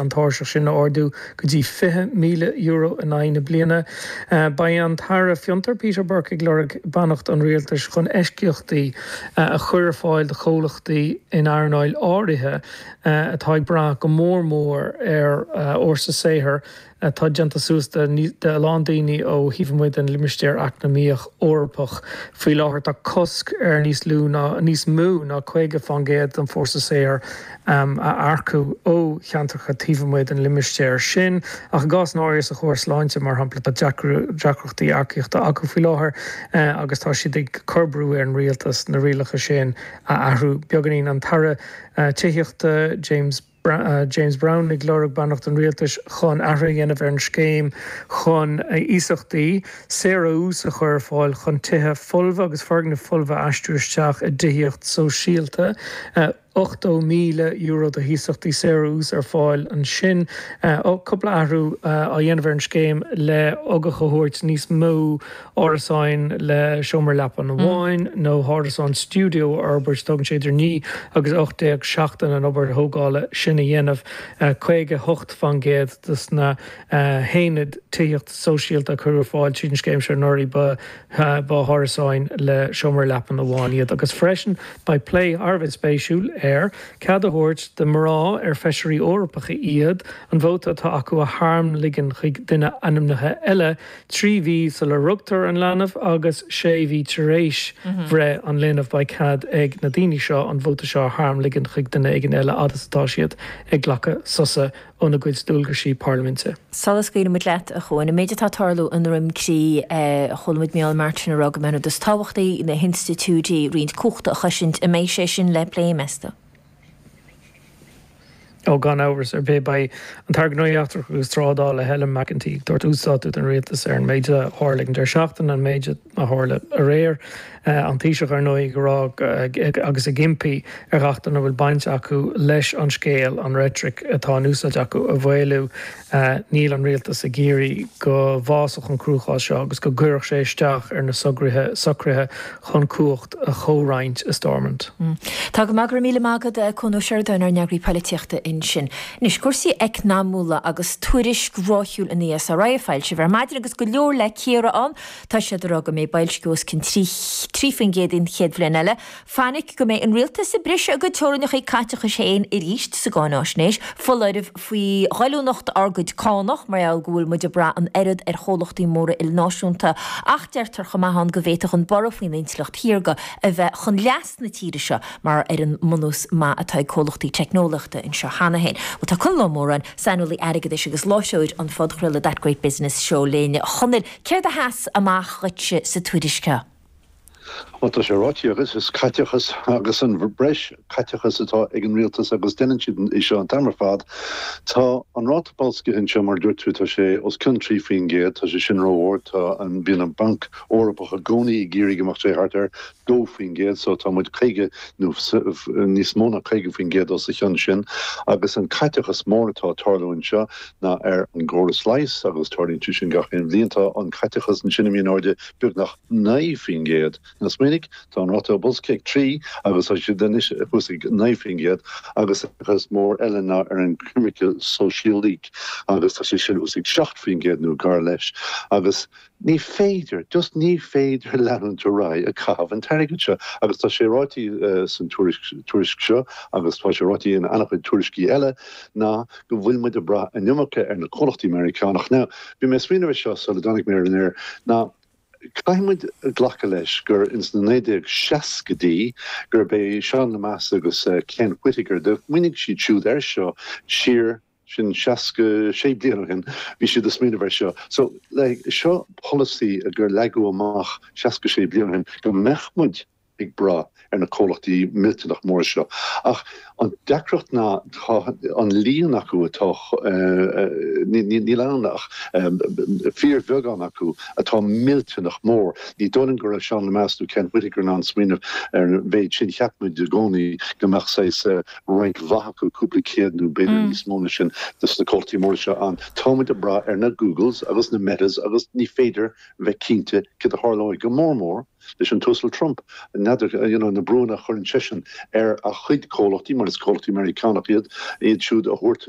an tairseach sin a ardú go dtí €20,000 in aghaidh na bliana. Beidh an tAire Fiontar, Peter Burke, ag lorg beannacht an Rialtais chun eisceachtaí a chur ar fáil do chomhlachtaí in earnálacha áirithe atá ag brath go mór mór ar fhórsa saothair atá déanta suas de a lán daoine ó thaobh amuigh den Limistéar Eacnamaíoch Eorpach. Faoi láthair tá cosc ar níos lú ná níos mó ná 50% den bhfórsa saothair a earcú ó cheantracha taobh amuigh den limistéar sin, ach i gcás áiríos an córas sláinte, mar shampla, tá deacrachtaí earcaíochta acu faoi láthair agus tá siad ag cur brú ar an rialtas na rialacha sin a athrú beagáinín. An tAire Tithíochta James Browne ag lorg beannacht an rialtais chun athruithe a dhéanamh ar an scéim chun iasachtaí saor ó ús a chur ar fáil chun tithe folmha agus foirgnimh folmha a aistriú isteach i dtithíocht shóisialta. €80,000 d'iasachtaí saor ó ús ar fáil ansin. Cúpla athrú á dhéanamh ar an scéim le hugach a thabhairt níos mó árasáin le seomra leapan amháin nó árasán stiúideo a fhorbairt. Tógann sé idir naoi agus ocht déag seachtain an obair thógála sin a dhéanamh. Caoga hocht faoin gcéad de na haonaid tithíochta sóisialta a cuireadh ar fáil tríd an scéim seo anuraidh ba Ba árasáin le seomra leapan amháin iad agus freisin beidh plé thar a bheith spéisiúil ar cead a thabhairt do mhná, ar feisirí Eorpacha iad, an vóta atá acu a tharmligean chuig duine ainmnithe eile trí mhí sula rugtar an leanbh agus sé mhí tar éis bhreith an linbh. Beidh cead ag na daoine seo an vóta seo a tharmligean chuig duine éigin eile fhad is atá siad ag glacadh sosa. óna gcuid dualgaisí parlaiminte. Sula scaoilimid leat, a Chuain, an méid atá ag tarlú i nDroim Crí, chualamid Micheál Martin ag rá go mba é an ní is tábhachtaí na hinstitiúidí, roinnte cumhachta a chosaint. An mbeidh sé sin le plé, meas tú? Ó, gan amhras ar bith. Beidh an tAire Gnóthaí Eachtracha agus Trádála, Helen McEntee, ag tabhairt uasdátú don Rialtas ar an méid a tharla ag an deireadh seachtaine, an méid a. a tharla aréir. An Taoiseach, ar ndóigh, ag rá agus ag impí ar gach duine a bhfuil baint acu leis an scéal an reitric atá in úsáid acu a mhaolú. Níl an Rialtas ag iarraidh go bhfásfadh an cruachás seo agus go gcuirfeadh sé isteach ar na socruithe chun cumhacht a chomhroinnt i Stormont. Tá go maith, go raibh míle maith agat a Chuain Uí Sheireadáin, ár n-eagraí polaitíochta ansin. Anois, cúrsaí eacnamaíocha agus tuairisc ráithiúil an ESRI a foilsíodh ar maidin agus go leor le cíoradh ann. Tá siad ag rá go mbeidh boilsciú os cionn 3 faoin gcéad an chéad bhliain eile. Fainic go mbeidh an rialtas ag briseadh a gcuid teorainneacha caiteachais féin arís sa gcáináisnéis, foláireamh faoi ghoilliúnacht ár gcuid cánach mar gheall go bhfuil muid ag brath an oiread ar chomhlachtaí móra ilnáisiúnta, ach deirtear chomh maith ann go bhféadfadh an borradh faoin intleacht shaorga a bheith chun leas na tíre seo mar gheall ar an mbunús maith atá ag comhlachtaí teicneolaíochta anseo cheana féin. Tá Conall Ó Móráin, saineolaí airgeadais agus láithreoir an phodchraoladh That Great Business Show linn. A Chonaill. Céard a sheas amach dhuitse sa tuairisc seo? Bhuel tá sé ráite agat, is caiteachas agus an breis caiteachas atá ag an rialtas agus deineann siad é seo an t-am ar fad. Tá an ráta boilscithe anseo mar a dúirt tú tá sé os cionn 3 faoin gcéad, tá sé sin ró-ard, tá an, bíonn an Banc Eorpach i gcónaí ag iarraidh go mbeadh sé thart ar 2% so tá muid 50 nó níos mó ná 50% os a chionn sin agus an caiteachas mór atá ag tarlú anseo ná ar an gcóras leighis agus tarlaíonn sé sin gach aon bhliain, tá an caiteachas ansin imithe in airde beagnach 9%. Now smaoinigh, tá an ráta boilscithe ag 3 agus tá siad anois thuas ag 9% agus an caiteachas mór eile ná ar an choimirce shóisialaigh agus tá sé sin thuas ag 7% nó gar leis agus Ní féidir, just ní féidir leanúint ar aghaidh ag caitheamh an t-airgead seo agus tá sé ráite san tuairisc seo agus tá sé ráite in an-chuid tuairiscí eile ná go bhfuil muid ag brath an iomarca ar na comhlachtaí Meiriceánach. Now, bhí mé ag smaoineamh ar seo sula dtáinig mé ar an aer ná caithfidh muid glacadh leis gur ins na 1960idí gurb é Seán Lemass agus Ken Whitaker, do smaoinigh siad siúd ar seo siar, sin seasca sé bliain ó shin bhí siad ag smaoineamh ar seo so like seo polasaí a gur leagadh amach seasca sé bliain ó shin go mbeadh muid ag brath ar na comhlachtaí millteanach móra seo ach an deacracht ná tá an líon acu atá eh níl ann ach em fíorbheagán acu atá millteanach mór ní dóigh go raibh Seán Lemass nó Ken Whitaker in ann smaoineamh ar an mhéid sin cheap muid i gcónaí go mbeadh saghas eh roinnt mhaith acu, cúpla céad nó b'fhéidir níos mó ná sin de na comhlachtaí móra seo ann, tá muid ag brath ar na Googles agus na Metas agus ní féidir bheith cinnte céard a tharlóidh, go mór mór leis an tUasal Trump. N'fheadar, you know, na brúnna a chuireann seisean ar a chuid comhlachtaí, mar is comhlachtaí Meiriceánach iad, iad siúd a thabhairt,